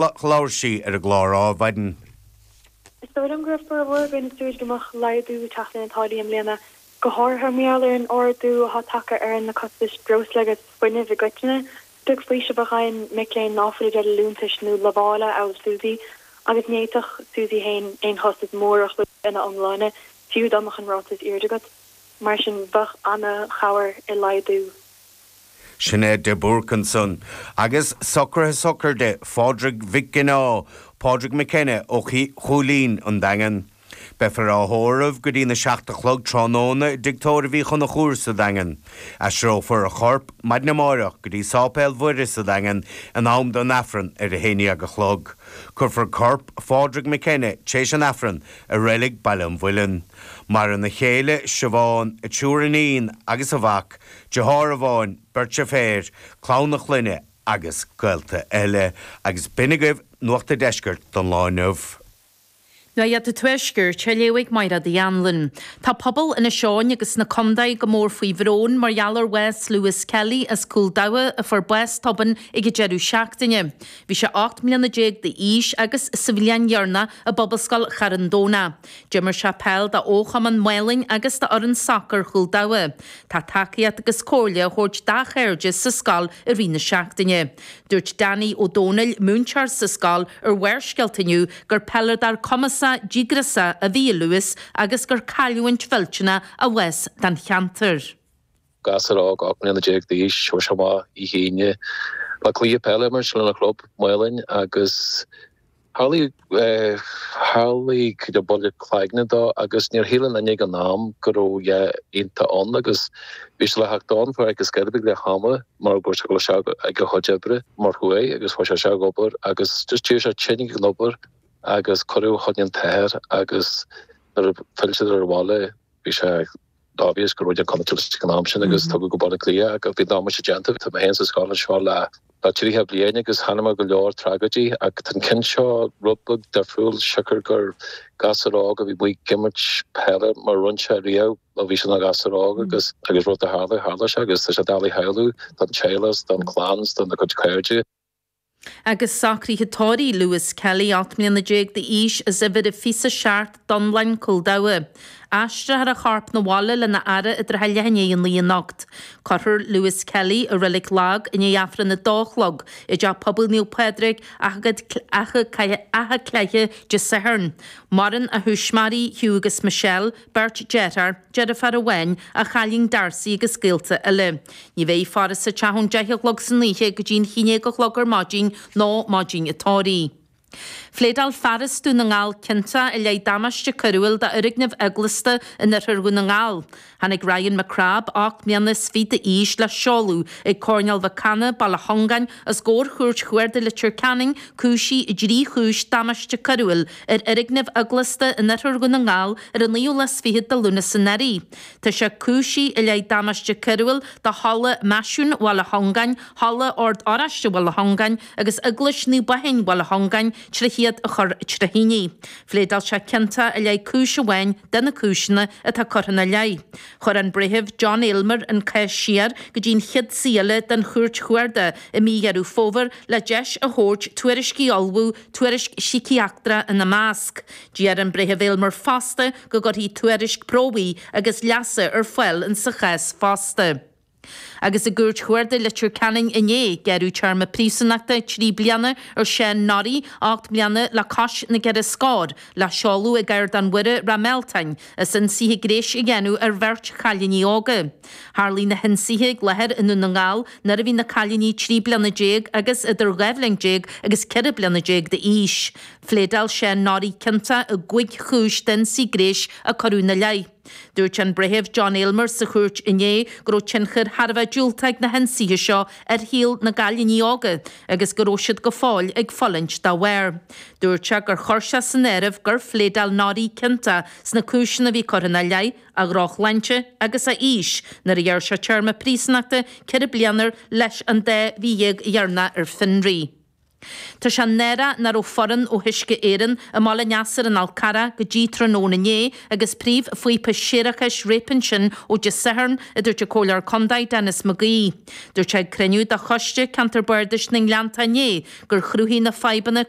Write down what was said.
Labhair sí ar an gclár Adhmhaidin. Is dóigh liom go raibh formhór againn ag súil go mbeadh laghdú ag teacht ar na táillí i mbliana, go háirithe mar gheall ar an ardú atá tagtha ar na costais breosla agus fuinnimh i gcoitinne. Beag faoiseamh atá againn mic léinn ná fuil i dteideal liúntais nó lamhála amhail SUSI, agus ní fhéadfadh SUSI féin aon chostas mór a chlúdach ina iomláine, fiú dá mbeadh an ráta is airde agat. Mar sin, bheadh an-chabhair i laghdú. Sinéad de Búrc ansan, agus socruithe sochraide Phádraig Mhic Ginneá, Pádraig McKenna ó Chúilín, an Daingean. Beifear á thórramh go dtína seacht a chlog tráthnóna i dtigh tórraimh Uí Chonchúir sa Daingean. Aistreofar a chorp maidin amáireach go dtí Sáipéal Mhuire sa Daingean in am don Aifreann ar a haon dhéag a chlog. Cuirfear corp Phádraig McKenna t'réis an Aifrinn i reilig Baile an Mhuilinn. Maireann a chéile, Siobhán, a triúr iníon agus a mhac, Deartháir amháin, beirt deirféar, clann a chlainne agus gaolta eile. Agus b'in agaibh Nuacht an Deiscirt don lá inniu. Nuacht an Tuaiscirt, á léamh ag Maighreád Uí Anluain. Tá pobal Inis Eoghain agus na Condae go mór faoi bhrón mar gheall ar bhás Lewis Kelly as Cúil Dabhcha a fuair bás tobann ag an deireadh seachtaine. Bhí sé ocht mbliana déag d'aois agus sa bhliain dheireanach i bPobalscoil Charn Domhnach. D'imir sé peil d'fhochumann Mhálainn agus d'fhoireann sacair Chúil Dabhcha. Tá tacaíocht agus comhairle á thabhairt dá chairde sa scoil i rith na seachtaine. Dúirt Danny Ó Dónaill, múinteoir sa scoil ar Bharrscéalta inniu gur peileadóir cumasach, díograiseach a bhí i Lewis agus gur cailliúint mhillteanach a bhás don cheantar. gasúr óg ocht mbliana déag d'aois chuaigh sé amach oíche Aoine le cluiche peile a imirt lena chlub, Málainn, agus tharlaigh tharlaigh buille cloigne dó agus níor shíl aon duine ag an am go raibh a dhath iontach ann agus bhí sé le theacht ón pháirc go scairbigh le hama mar go raibh sé ag obair ag a chuid oibre mar thuaigh agus chuaigh sé ag obair agus just d'éirigh sé tinn ag an obair agus cuireadh fá choinne an t-athair agus nuair a phill siad abhaile bhí sé obvious go raibh unconscious ag an am sin agus tugadh go Baile Átha Cliath bhí an damáiste déanta. Tá mé féin sa scoil anseo le tríocha bliain agus chonaic muid go leor tragóidí ach tá an ceann seo rud beag difriúil siocair gur gasúr óg a bhí amuigh ag imirt peile mar a rinne sé riamh ó bhí sé ina ghasúr óg agus rud a tharla, tharla sé agus tá sé doiligh a shamhlú don teaghlach, don chlann, dona chuid cairde. Agus socruithe tórraimh Lewis Kelly, ocht mbliana déag d'aois, as uimhir a fiche a seacht, Dún Álainn, Cúil Dabhcha, aistreofar a chorp 'na bhaile lena fhaire i dtrátha leath i ndiaidh a naoi anocht. Cuirfear Lewis Kelly i Reilig Lag i ndiaidh Aifreann a dó a chlog i dTeach Pobail Naomh Pádraig, atha cleithe Dé Sathairn. Maireann a thuismitheoirí, Hugh agus Michelle, Beirt dearthár, deirfiúr amháin, a chailín Darcy agus gaolta eile. Ní bheidh faire sa teach ón deich a chlog san oíche go dtí an haon déag a chlog ar maidin, nó maidin an tórraimh. Phléadáil fear as Dún na nGall ciontach i leith damáiste coiriúil d'fhoirgneamh eaglasta in oirthear Dhún na nGall. Tháinig Ryan McCrabb, ocht mbliana is fiche d'aois, le seoladh ag Coirnéal Mhic Cana, Baile Suingean, os comhair Chúirt Chuarda Leitir Ceanainn, cúisithe i dtrí chúis damáiste coiriúil ar fhoirgneamh eaglasta in oirthear Dhún na nGall ar an naoú lá is fichead de Lúnasa anuraidh. Tá sé cúisithe i leith damáiste coiriúil do Halla Máisiún Bhaile Suingean, Halla Ord Oráiste Bhaile Suingean agus Eaglais Naomh Baoithín Bhaile Suingean tríd iad a chur trí thine. Phléadáil sé ciontach i leith cúis amháin de na cúiseanna atá curtha ina leith. Chuir an Breitheamh John Aylmer an cás siar go dtí an chéad suí eile den Chúirt Chuarda i mí Dheireadh Fómhair le deis a thabhairt tuairiscí a ullmhú tuairisc síciatrachta ina measc. D'iarr an Breitheamh Aylmer fosta go gcuirfí tuairisc promhaidh agus leasa ar fáil insa chás fosta. Agus i gCúirt Chuarda Leitir Ceanainn inné, gearradh téarma príosúnachta trí bliana ar Sean Norrie, ocht mbliana le cois na gceithre scóir, le seoladh ag Ardán Mhuire, Ráth Mealtáin, as ionsaithe gréis a dhéanamh ar bheirt chailíní óga. Tharlaigh na hionsaithe ag láthair i nDún na nGall nuair a bhí na cailíní trí bliana déag agus idir dhá bhliain déag agus ceithre bliana déag d'aois. Phléadáil Seán Norrie ciontach i gcúig chúis d'ionsaí gréis a cuireadh ina leith. Dúirt an Breitheamh John Aylmer sa chúirt inné go raibh tionchar thar a bheith diúltach ag na hionsaithe seo ar shaol na gcailíní óga agus go raibh siad go fóill ag fulaingt dá bharr. Dúirt sé gur chuir sé san áireamh gur phléadáil Norrie ciontach sna cúiseanna a bhí curtha ina leith a dhrochshláinte agus a aois nuair a ghearr sé téarma príosúnachta ceithre bliana air leis an dá mhí dhéag dheireanacha ar fionraí. Tá sé náireach nach raibh foireann ó Uisce Éireann i mBaile Neasair in Alcarràc go dtí tráthnóna inné agus príomhphíopa séarachais réabtha ansin ó Dé Sathairn, a dúirt an Comhairleoir Contae Denis McGee. Dúirt sé ag cruinniú de Choiste Ceantar Bardais na nGleanntán inné gur chruthaigh na fadhbanna go.